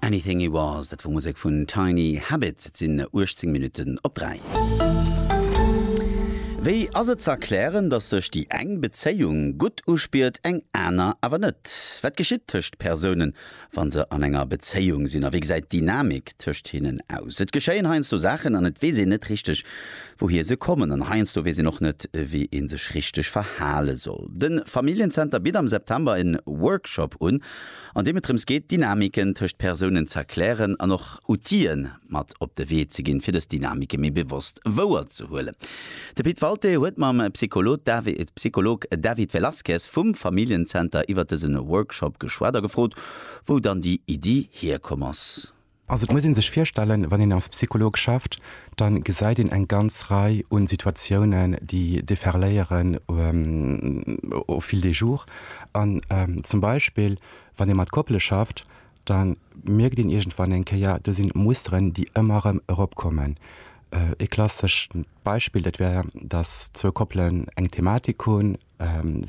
Anything He Was, dat wor Musek vun Tiny Habit. Et sinn 18 Minutten op 3. Wéi ass et ze erklären, datt sech déi eng Bezéiung gutt uspiert, eng aner awer net? Wat geschitt tëscht Persounen, wa se an enger Bezéiung sinn a wéi gesäit d'Dynamik tëscht hinnen aus? Et geschéien heiansdo Saachen an et weess een net richteg, wouhir se kommen an heiansdo weess een och net, wéi ee sech richteg verhale soll. De Familljen-Zenter bitt am September en Workshop un, an deem et drëms geet, Dynamiken tëscht Persounen z'erklären an och Outille mat op de Wee ze ginn, fir dës Dynamike méi bewosst wouerzehuelen. De Pit Walté huet mam Psycholog David Velasquez vum Familljen-Zenter iwwer dëse Workshop geschwat a gefrot, wou dann déi Iddi hierkomm ass. Also et muss een sech virstellen, wann een als Psycholog schafft, da gesäit een eng ganz Rei un Situatiounen, déi déferléieren au fil des jours. An zum Beispill wann ee mat Koppele schafft, da mierkt een iergendwann eng Kéier, do sinn Musteren, déi ëmmer erëm eropkommen. Ee klassescht Beispill, dat wär, datt zwou Koppelen eng Thematik hunn,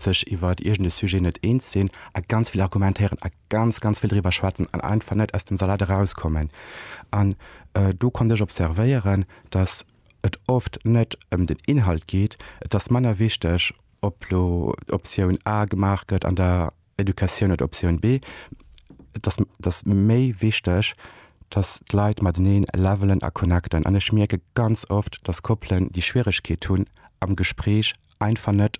sech iwwert iergend e Sujet net eens sinn a ganz vill argumentéieren a ganz, ganz vill driwwer schwätzen an einfach net aus dem Salat erauskommen. An do konnt ech observéieren, datt et oft net ëm den Inhalt geet. Et ass manner wichteg, ob elo Optioun A gemaach gëtt an der Educatioun oder Optioun B, et ass, et ass méi wichteg, dass d'Leit mateneen levelen a connecten. An ech mierke ganz oft, dass Koppelen déi Schwieregkeet hunn, am Gespréich einfach net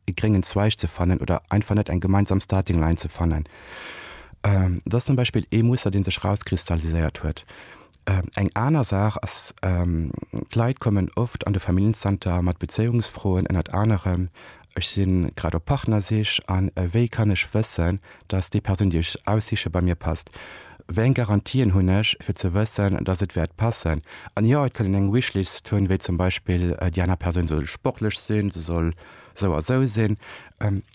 e gréngen Zweig ze fannen oder einfach net eng gemeinsam Starting Line ze fannen. Dat ass zum Beispill ee Muster, dee sech erauskristalliséiert huet. Eng aner Saach ass, d'Leit kommen oft an de Familljenzenter mat Bezéiungsfroen, ënnert anerem Ech si grad op Partnersich a wéi kann ech wëssen, dass déi Persoun, déi ech aussiche, bei mir passt? Wéi eng Garantien hunn ech, fir ze wëssen, dass et wäert passen? An jo, et kann een eng Wishlist hunn, wéi zum Beispill, déi aner Persoun soll sportlech sinn, se soll sou a sou sinn.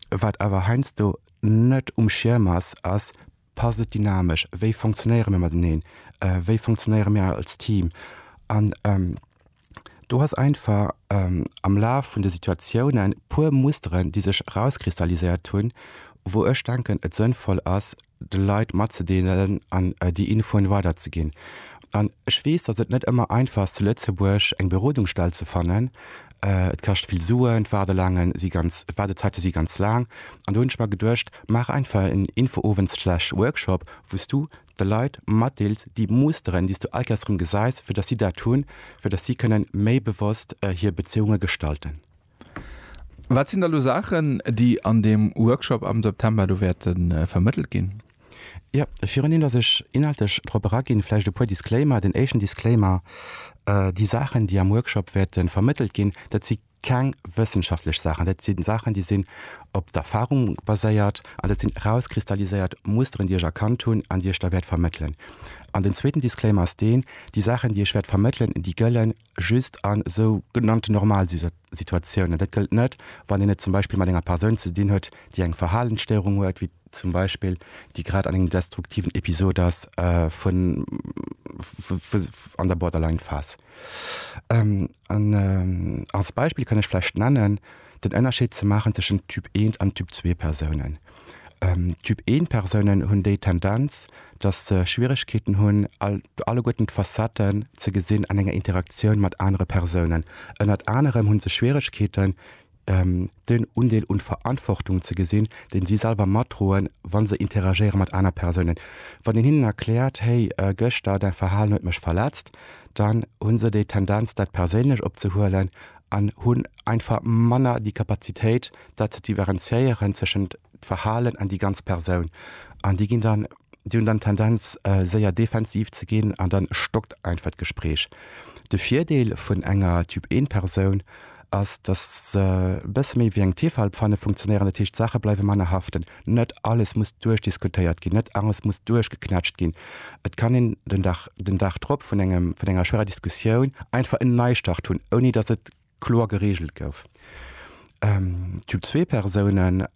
Wat awer heiansdo net um Schierm ass, ass, Passt et dynamesch? Wéi funktionéiere mir mateneen? Wéi funktionéiere mir als Team? An do ass einfach am Laf vun de Situatiounen e puer Musteren, déi sech erauskristalliséiert hunn, wou ech denken, et sënnvoll ass, de Leit matzedeelen an déi Infoen weiderzeginn. An ech weess, dass et net ëmmer einfach ass, zu Lëtzebuerg eng Berodungsstell ze fannen. Et kascht vill Suen, d'Waardelaange si ganz, d'Waardezäite si ganz laang. An do hunn ech mer geduecht, Maach einfach en Infoowend slash Workshop, wou s du de Leit matdeels déi Musteren, déi s du all Kéiers erëm gesäis, fir datt si dat hunn, fir datt si kënnen méi bewosst hir Bezéiunge gestalten. Wat sinn da lo Saachen, déi an deem Workshop am September do wäerte vermëttelt ginn? Jo, viruneent datt ech inhaltlech drop eraginn, vläicht e puer Disclaimer. Den éischten Disclaimer, Déi Saachen, déi am Workshop wäerte vermëttelt ginn, dat si keng wëssenschaftlech Saachen, dat si Saachen, déi sinn op d'Erfarung baséiert an dat sinn erauskristalliséiert Musteren, déi ech erkannt hunn an déi ech da wäert vermëttelen. An den zweeten Disclaimer ass deen, Déi Saachen, déi ech wäert vermëttelen, déi gëlle just a sou genannten Normalsituatiounen. Dat gëllt net, wann een et zum Beispill mat enger Persoun ze dinn huet, déi eng Verhalensstéierung huet, wéi zum Beispill déi grad an engem destruktiven Episod ass vun an der Borderline-Phas. An als Beispill kann ech vläicht nennen, den Ënnerscheed ze maachen tëschent Typ I an Typ II Persounen. Typ I Persounen hunn déi Tendenz, datt se Schwieregkeeten hunn, all, alleguerten d'Facetten ze gesinn an enger Interaktioun mat anere Persounen. Ënnert anerem hu se Schwieregkeeten, den Undeel un Verantwortung ze gesinn, deen si selwer matdroen, wann se interagéieren mat aner Persounen. Wann een hinnen erkläert, hey, gëschter däi Verhalen huet mech verletzt, dann hunn se déi Tendenz dat perséinlech opzehuelen an hunn einfach manner déi Kapazitéit dat ze diverenziéieren tëschent Verhalen an déi ganz Persoun. An déi ginn dann, déi hunn dann d'Tendenz séier defensiv ze ginn an dann stockt einfach d'Gespräch. De Virdeel vun enger Typ-1-Persoun ass, datt se e bësse méi wéi eng Tefalpfanne funktionéieren. Dat heescht, d'Saache bleiwe manner haften. Net alles muss duerchdiskutéiert ginn, net alles muss duerchgeknätscht ginn. Et kann een den Dag, den Dag drop vun engem, vun enger schwerer Diskussioun einfach en Neistart hunn, ouni datt et kloer gereegelt gouf. Typ zwee Persounen,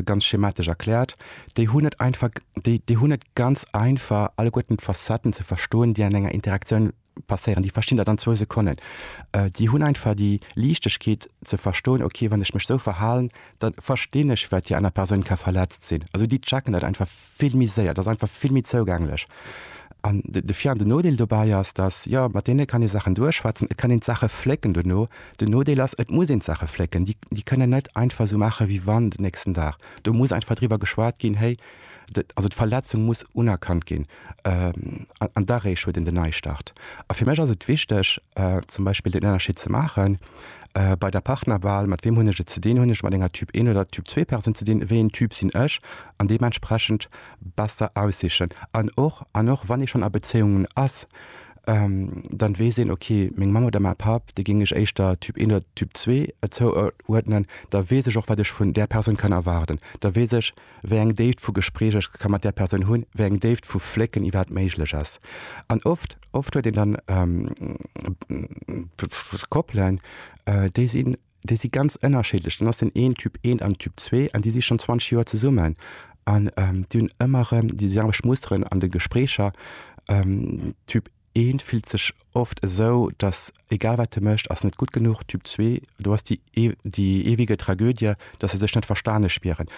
ganz schematesch erkläert, déi hunn et einfach, déi hunn et ganz einfach alleguerten d'Facetten ze verstoen, déi an enger Interaktioun passéieren, déi verstinn dat an zwou Sekonnen. Déi hunn einfach déi Liichtegkeet ze verstoen, ok wann ech mech esou verhalen, da verstinn ech wat déi aner Persoun ka verletzt sinn. Also déi checken dat einfach vill méi séier, dat ass einfach vill méi zougänglech. An de Vir an de Nodeel dobäi ass, datt, jo mat deene kann ee Saachen duerchschwätzen, et kann een d'Saache flécken dono. Den Nodeel ass, et muss een d'Saache flécken, déi kënnen net einfach esou maache wéi wann den nächsten Dag. Do muss einfach driwwer geschwat ginn, héi, also d'Verletzung muss unerkannt ginn. An doduerch huet een den Neistart. A fir mech ass et wichteg, zum Beispill den Ënnerscheed ze maachen, bei der Partnerwahl, mat weem hunn ech et ze dinn? Hunn ech et mat enger Typ 1 oder Typ 2 Persoun ze dinn? Wéi een Typ sinn ech? An deementsprechend besser aussichen. An och, an och wann ee schonn a Bezéiungen ass, da weess een, ok, meng Mamm oder mäi Papp, déi géing ech éischter Typ 1 oder Typ 2 zouuerdnen. Da weess ech och, wat ech vun där Persoun kann erwaarden. Da weess ech, wéi eng Déift vu Gespréich ech ka mat där Persoun hunn, wéi eng Déift vu Flécken iwwerhaapt méiglech ass. An oft, oft huet een dann Koppelen, déi sinn, déi si ganz ënnerschiddlech. Dann ass den een Typ eent an Typ zwee an déi si schonn 20 Joer zesummen an déi hunn ëmmer erëm déi selwecht Musteren an de Gespréicher. Typ. Eent fillt sech oft esou, datt egal wat e mécht, ass net gutt genuch, Typ zwee, do ass déi eewege Tragödie, datt se sech net verstane spieren.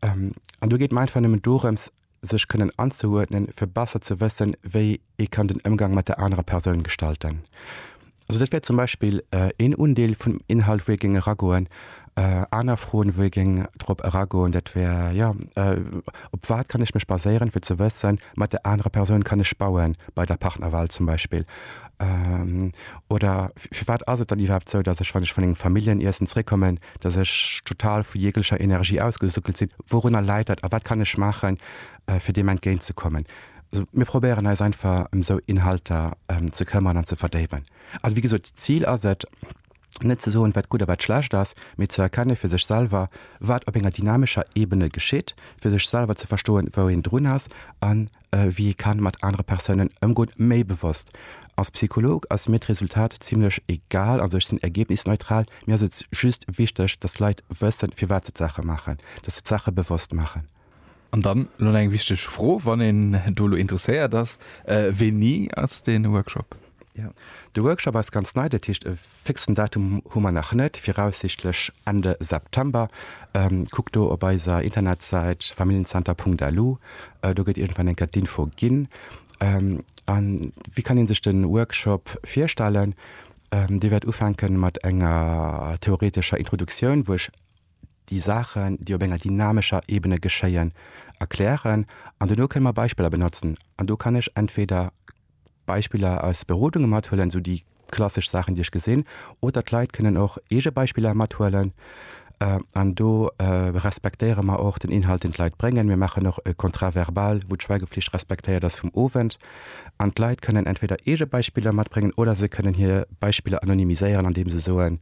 An do geet mer einfach nëmmen dorëms, sech kënnen anzeuerdnen, fir besser ze wëssen, wéi ee kann den Ëmgang mat der anerer Persoun gestalten. Also dat wär zum Beispill een Undeel vum Inhalt, wou ee géing eragoen. Aner Froen, wou ee géing drop eragoen, dat wär, jo, op wat kann ech mech baséieren, fir ze wëssen, mat där anerer Persoun kann ech bauen, bei der Partnerwahl zum Beispill. Oder firwat ass et dann iwwerhaapt esou, datt ech, wann ech vun engem Familljenniessen zeréckkommen, datt ech total vu jeglecher Energie ausgesuckelt sinn? Wourunner läit dat a wat kann ech maachen, fir deem entgéint ze kommen. Mir probéieren eis einfach ëm esou Inhalter ze këmmern an ze verdéiwen. A wéi gesot, d'Zil ass et, net ze soen, wat gutt a wat schlecht ass, mee ze erkenne fir sech selwer, wat op enger dynamescher Ebene geschitt, fir sech selwer ze verstoen, wou een drun ass a wéi ee ka mat anere Persounen ëmgoen, méi bewosst. Als Psycholog ass mir d'Resultat zimlech egal, also ech sinn ergebnisneutral. Mir ass et just wichteg, dass d'Leit wëssen, firwat se d'Saache maachen, dass se d'Saache bewosst maachen. An dann elo nach eng wichteg Fro, wann een do elo interesséiert ass, Wéini ass dee Workshop? Jo, de Workshop ass ganz nei, dat heescht e fixen Datum hu mer nach net, viraussichtlech Ende September. Kuckt do op eiser Internetsäit familienzenter Punkt lu, do gëtt iergendwann eng Kéier d'Info ginn. A wéi kann ee sech de Workshop virstellen? Dee wäert ufänke mat enger theoretescher Introduktioun, wou ech déi Saachen, déi op enger dynamescher Ebene geschéien, erklären an dono kënne mer Beispiller benotzen. An do kann ech entweder Beispiller aus Berodunge mathuelen, esou déi klassesch Saachen, déi ech gesinn, oder d'Leit kënnen och eege Beispiller mathuelen. An do respektéiere mer och den Inhalt, deen d'Leit bréngen. Mir maachen och e Contrat verbal, wou d'Schweigeflicht respektéiert ass vum Owend. An d'Leit kënnen entweder eege Beispiller matbréngen oder se kënnen hir Beispiller anonymiséieren, andeem se soen,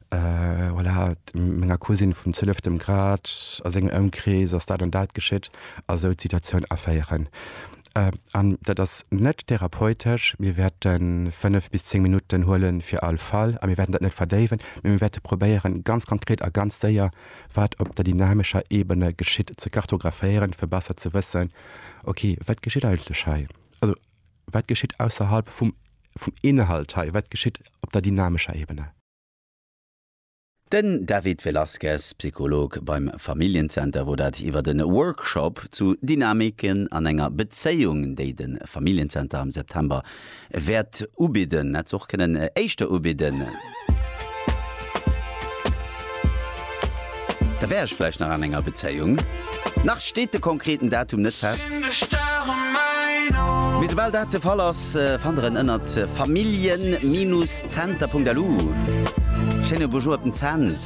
voilà, menger Cousine vum zwieleften Grad, a sengem Ëmkrees ass dat an dat geschitt, a sou d'Situatioun aféieren. An dat ass net therapeutesch. Mir wäerten fënnef bis zéng Minutten huelen fir all Fall, a mir wäerten dat net verdéiwen, mee mir wäerte probéieren, ganz konkret a ganz séier, wat op der dynamescher Ebene geschitt, ze kartographéieren, fir besser ze wëssen, ok, wat geschitt eigentlech hei, also wat geschitt ausserhalb vum Inhalt hei, wat geschitt op der dynamescher Ebene. Den David Velazquez, Psycholog beim Familljen-Zenter wor dat iwwert en Workshop zu Dynamiken an enger Bezéiung déi den Familljen-Zenter am September wäert ubidden. En hätt se och kënnen éischter ubidden. Da wär ech vläicht nach an enger Bezéiung. Nach steet de konkreten Datum net fest. Mee soubal dat de Fall ass, fannt der en ënnert familjen-zenter.lu. Schéine Bonjour op den Cents.